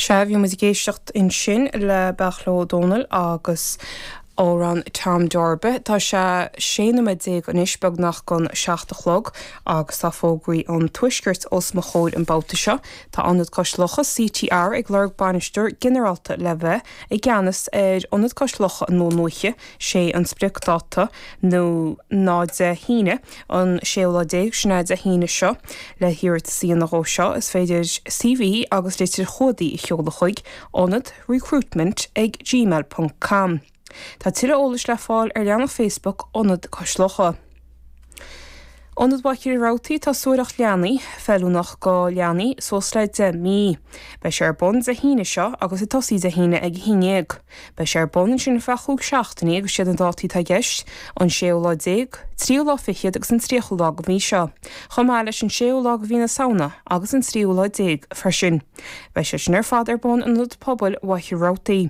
Sea, bhí muid ag éisteacht ansin le Beairtle Ó Domhnaill agus amhrán Tom Darby. Tá sé 16 nóiméad anois beagnach don seacht a chlog agus tá fógraí an Tuaiscirt os mo chomhair an babhta seo. Tá Ionad Cois Locha, CTR, ag lorg bainisteoir ginearálta le bheith i gceannas ar Ionad Cois Locha i nDún Lúiche. sé an spriocdáta ná Dé hAoine an séú lá déag, sin é Dé hAoine seo. Le hiarratas a dhéanamh dhó seo is féidir CV agus litir chumhdaigh a sheoladh chuig, Ionad, recruitment ag gmail ponc com. Tá tuilleadh eolais le fáil ar leathnach Facebook Ionad Cois Locha. Ionad Mhachaire Rabhartaigh Tá suathaireacht leanaí feiliúnach go leanaí suas le 10 mí. Beidh sé ar bun Dé hAoine seo agus ag tosaí Dé hAoine ag 11. Beidh sé ar bun ansin ar feadh chúig seachtainí agus siad na dátaí atá i gceist, an séú lá déag, tríú lá fichead agus an tríochú lá go mhí seo, chomh maith leis an séú lá go mhí na Samhna agus an tríú lá déag freisin. Beidh sé sin ar fad ar bun in Ionad Pobail Mhachaire Rabhartaigh.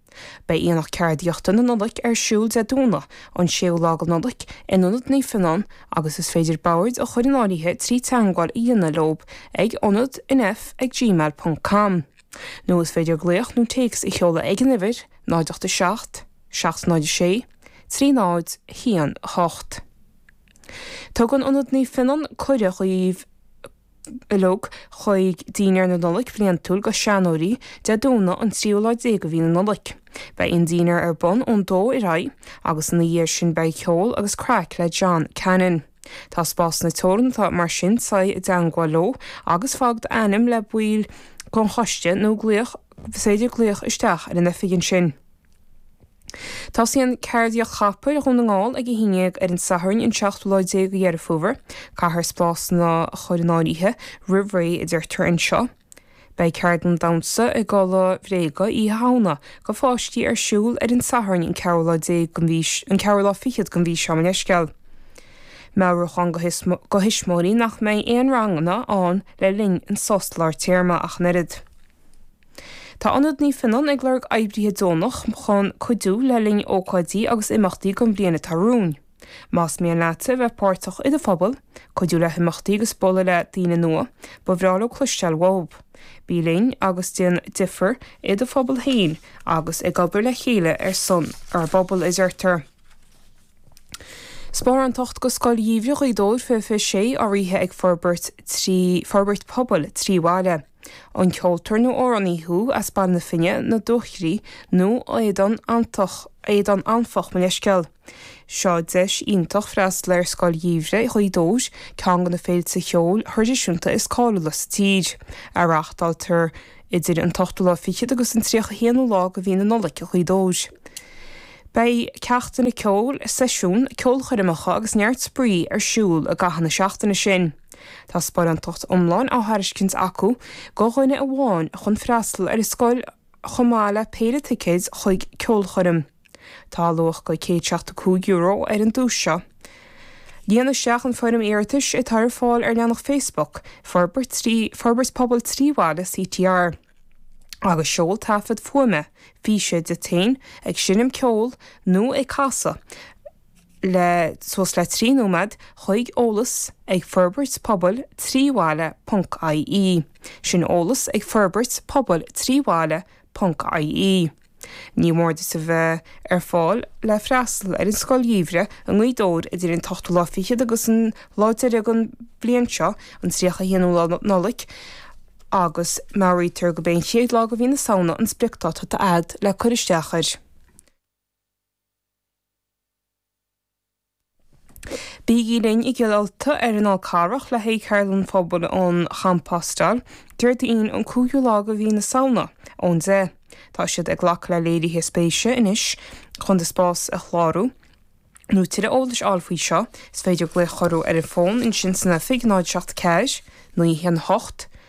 Beidh Aonach Ceardaíochta na Nollaig ar siúl Dé Domhnaigh an 6ú lá go Nollaig in Ionad Naomh Fionnán agus is féidir bord a chur in áirithe trí teagmháil a dhéanamh leo ag ionad nf ag gmail ponc com nó is féidir glaoch nó téacs a sheoladh ag an uimhir 087 706 3018. Tugann Ionad Naomh Fionnán cuireadh dhaoibh. Bheith leo chuig Dinnéar na Nollag bliantúil go Seanóirí, Dé Domhnaigh an tríú lá déag de mhí na Nollag. Beidh an dinnéar ar bun ón dó ar aghaidh agus ina dhiaidh sin beidh ceol agus craic le John Cannon. Tá spásanna teoranta mar sin faigh i dteangmháil leo agus fág d'ainm le baill den choiste nó glaoch, is féidir glaoch isteach ar an oifig ansin. Tosaíonn Ceardaíocht Copair Dhún na nGall ag a haon déag ar an Satharn an 17 lá de Dheireadh Fómhair. Caithfear spásanna a chur in áirithe roimh ré a deirtear anseo. Beidh ceardlann damhsa i gculaith bhréige Oíche Shamhna go pháistí ar siúl ar an Satharn an ceathrú lá déag den mhí an ceathrú lá fichead den mhí seo. Mo leithscéal. Meabhrúchán go thuismitheoirí nach mbeidh aon ranganna ann le linn an sos lár téarma ach an oiread. Tá Ionad Naomh Fionnán ag lorg oibrithe deonach chun cuidiú le linn ócáidí agus imeachtaí don bhliain atá romhainn. Más mian leatsa a bheith páirteach i do phobal, cuidiú le himeachtaí agus bualadh le daoine nua, ba bhreá leo cloisteáil uaibh. Bí linn agus déan difear i do phobal féin agus ag obair le chéile ar son ár bpobal, a deirtear. Sparánacht go Scoil Gheimhridh Ghaoth Dobhair 2026 urraithe ag forbairt trí forbairt pobail trí bhaile. An ceoltóir nó amhránaí thú as Baile na Finne, na Dúchoraidh nó Éadan Anfach, mo leithscéal? Seo deis iontach freastal ar Scoil Gheimhridh Ghaoth Dobhair, ceann de na féilte cheoil thraidisiúnta is cáiliúla sa tír, a reáchtáiltear idir an t-ochtú lá fichead agus an tríocha haonú lá de mhí na Nollaig i nGaoth Dobhair. Beidh ceachtanna ceoil, seisiún, ceolchoirmeacha agus neart spraoi ar siúl i gcaitheamh na seachtaine sin. Tá sparántacht iomlán á thairiscint acu go dhuine amháin chun freastal ar an scoil chomh maith le péire ticéid chuig ceolchoirm. Tá luach go €175 ar an duais seo. Líon isteach an foirm iarratais atá ar fáil ar leathanach Facebook Forbairt Pobail trí Bhaile CTR agus seol taifead fuaime, físe, díot fhéin ag seinm ceoil nó ag casadh. le suas le 3 nóiméad chuig eolas ag Forbairt Pobail trí Bhaile ponc IE. Sin eolas ag Forbairt Pobail trí Bhaile ponc IE. Ní mór duit a bheith ar fáil le freastal ar an Scoil Gheimhridh i nGaoth Dobhair idir an t-ochtú lá fichead agus an lá deiridh den bhliain seo, an 31ú lá Nollaig, agus meabhraítear gurb é an chéad lá de mhí na Samhna an spriocdáta atá agat le cur isteach air. Bígí linn i gCill Ulta ar an Fhál Carrach le haghaidh Ceardlann Phobail um Chompostáil, Déardaoin an 5ú lá de mhí na Samhna ón 10:00. Tá siad ag glacadh le léirithe spéise anois. Chun do spás a chlárú nó tuilleadh eolais a fháil faoi seo, is féidir glaoch orthu ar an bhfón ansin san oifig, 074 918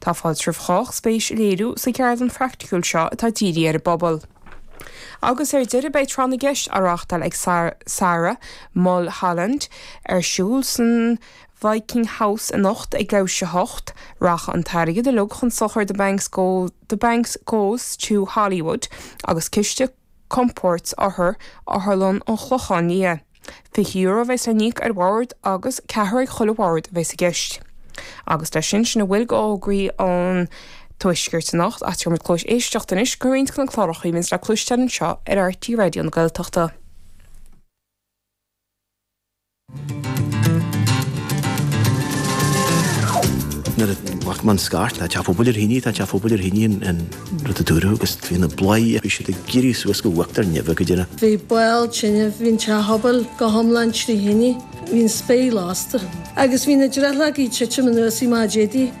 Tá fáilte roimh chách spéis a léiriú sa gceardlann phraicticiúil seo atá dírithe ar an bpobal. Agus ar deireadh beidh Tráth na gCeist á reáchtáil ag Sarah Mulholland ar siúl san Viking House anocht ag leathuair tar éis a 8. Rachaidh an t-airgead uilig chun sochair The Banks Goes to Hollywood agus Ciste Compoird Othar, Otharlann an Chlocháin Liath. €20 a bheas le n-íoc ar bhord agus ceathrar ag chuile bhord a bheas i gceist. Agus leis sin sin a bhfuil go fhógraí an Tuaiscirt anocht ach tabharfaidh muid cluais éisteachta anois go roinnt go na cláracha a bhíonns le cloisteáil anseo ar RTÉ Raidió na Gaeltachta. Nuair a chuaigh amach an scairt tá teach an phobail ar thine tá teach an phobail ar thine an rud a dúradh agus bhí na bladhairí bhí siad ag éirí suas go huachtar neimhe go deimhin. Bhí baol tine, bhí an teach pobail go hiomlán trí thine, bhí an spéir lasta agus bhí na drithleogaí ag titim anuas mar a déarfá.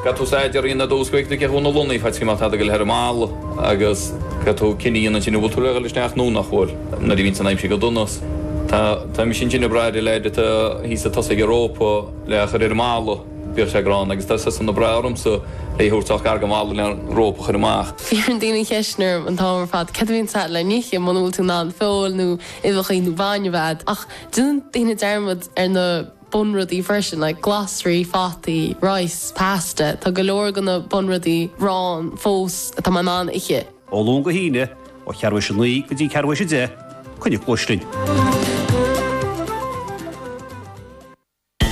Bheadh tú sa deireadh i dtús chuig na gceathrúna ansin go bhfeicfeá má tá tú le ar an mballa agus bheadh tú ag cinneadh ansin an bhfuil tú le dhul isteach nó nach bhfuil. Nuair a bhíonns an aimsir go dona tá tá mise ansin ag brath ar an leaid atá thíos chun tosaigh an rópa le a chur ar an mballa. Bhíodh sé gránna agus tá seisean ag brath ormsa é a thabhairt isteach ar an mballa le an rópa a chur amach. Cuireann daoine an cheist orm an t-am ar fad céard a bhíonns agat le nithe muna bhfuil tú in ann feoil nó uibheachaí nó bainne a bheith agat ach déanann daoine dearmad ar na bunrudaí freisin, like glasraí, fataí, rice, pasta, tá go leor de na bunrudaí ann fós atá mé in ann ithe. Ó Luan go hAoine, ó cheathrú tar éis a naoi go dtí ceathrú tar éis a deich, coinnigí cluais linn.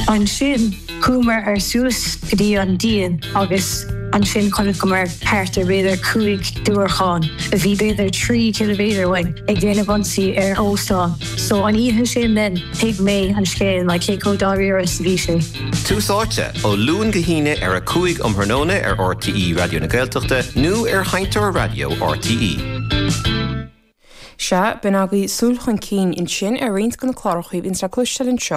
Ansin, chuamar suas go dtí an díon agus ansin chonaiceamar thart ar b'fhéidir cúig diúracán, a bhí b'fhéidir trí chiliméadar uainn, ag déanamh ionsaí ar óstán. So an oíche sin then thuig mé an scéal mar cé chomh dáiríre is a bhí sé. Tús áite, ó Luan go hAoine ar a cúig um thráthnóna ar RTÉ Raidió na Gaeltachta nó ar sheinnteoir raidió RTÉ. Sea, bhí ansin agaibh súil chun cinn ansin ar roinnt de na cláracha a bhíonns le cloisteáil anseo.